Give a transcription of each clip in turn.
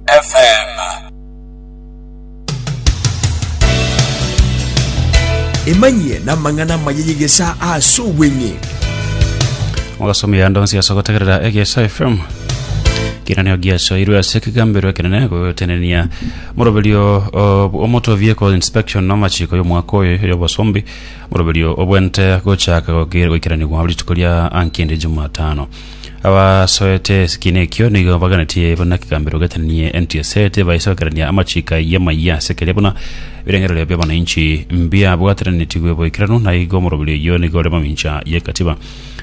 FM. Emanyie namang'ana amaya y'egesaa ase obweng'e. ogasoma eyando nsi ase gotegerera egesa fm kinaneo giasoirwe ase ekigambero ekenene gotenenia moroberio o- omotovie ko inspection amachiko y'omwaka oyo y'obosombi moroberio obwente gochaka goki- goikeranigwa rituko ria ankindi jumatano Abasoete esikina ekio nigo baganetie buna kigambero getanie NTSA tebaiso gokerania amachiko ayio amaya ase keria buna ebirengererio bi'abananchi mbiabwateranetigwe boikeranu na igo omoroberio oyio nigo ore mamincha y'ekatiba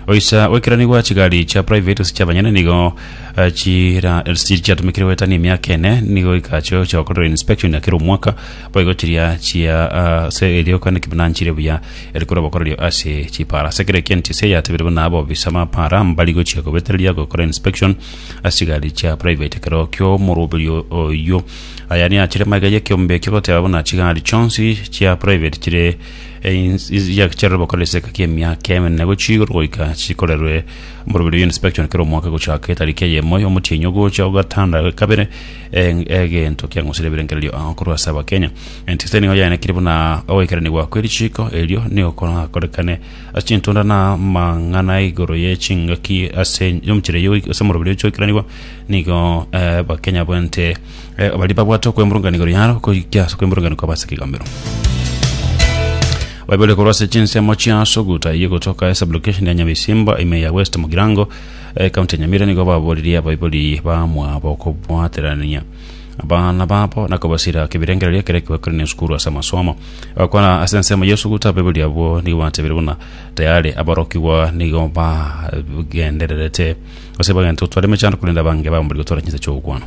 oisa goikeranigwa chigari chia private gose chiabanyene nigo eh, chira- chiatumikire goetania emiaka ene nigo goika achio chiagokorerwa inspection ya kera omwaka Boigo chiria chia ase erioka nekibunaani chiria buya, eri korwa bokorerio ase chipaara. Ase kera ekieni TCI yatebire buna abobisa b'amapaara mbari gochia kobetereria gokora inspection ase chigari chia private ekero ki'omoroberio oyio. Aya niachire magega y'ekeombe ekio goteba buna chigari chionsi chia private chire chiarorwe bokore esegeka ki'emiaka emenene gochia igoro goika chikorerwe omoroberio oyio inspection kera omwaka gochaka etariki eyemo y'omotienyi ogocha ogatano na kabere. egento kiang'usire ebirengererio ao korwa ase abakenya enti ase nigo yaenekire buna ogoikeranigwa kwe richiko erio nigo korakorekane ase chintunda na amang'ana igoro ye chingaki ase omochire yo ase omoroberi oche oikeranigwa nigo eh, abakenya bwente eh, baria babwate okwemurungania igoro yaro koikia ase okwemurungania kwabo ase ekegamero baibole korwa ase chinsemo chia suguta iye gotoka ase location ya nyabisimba ime ya west mugirango Ekaunti ya Nyamira nigo babooririe abaibori bamwabo kobwaterania abana babo na kobasira ake ebirengererio ekero ekibakorania esukuru ase amasomo. Bagakwana ase ensemo y'esuguta abaibori abwo nigo batebire buna tayari aborokigwa nigo bagendererete gose bagenta gotwara emechando korende abange bamorire gotwara chinsa chi'ogokwama.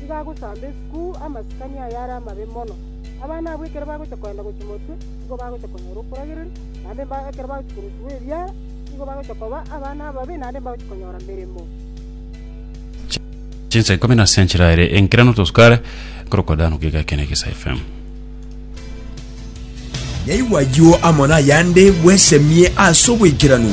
nigo agosamba esukuru amasikani ayare amabe mono. Abana abwo ekero bagocha kogenda gochia motwe, nigo bagocha konyora okworogereria, naende ekero bagochia korosigwa ebiara, nigo bagocha koba abana ababe, naende mbagochie konyora emeremo. Chinsa ikomi na ase enchera ere enkera notosukare korokwa dano kiga ekene kisa FM. Naigwa ayio amo nayande bwesemie ase obwaikeranu.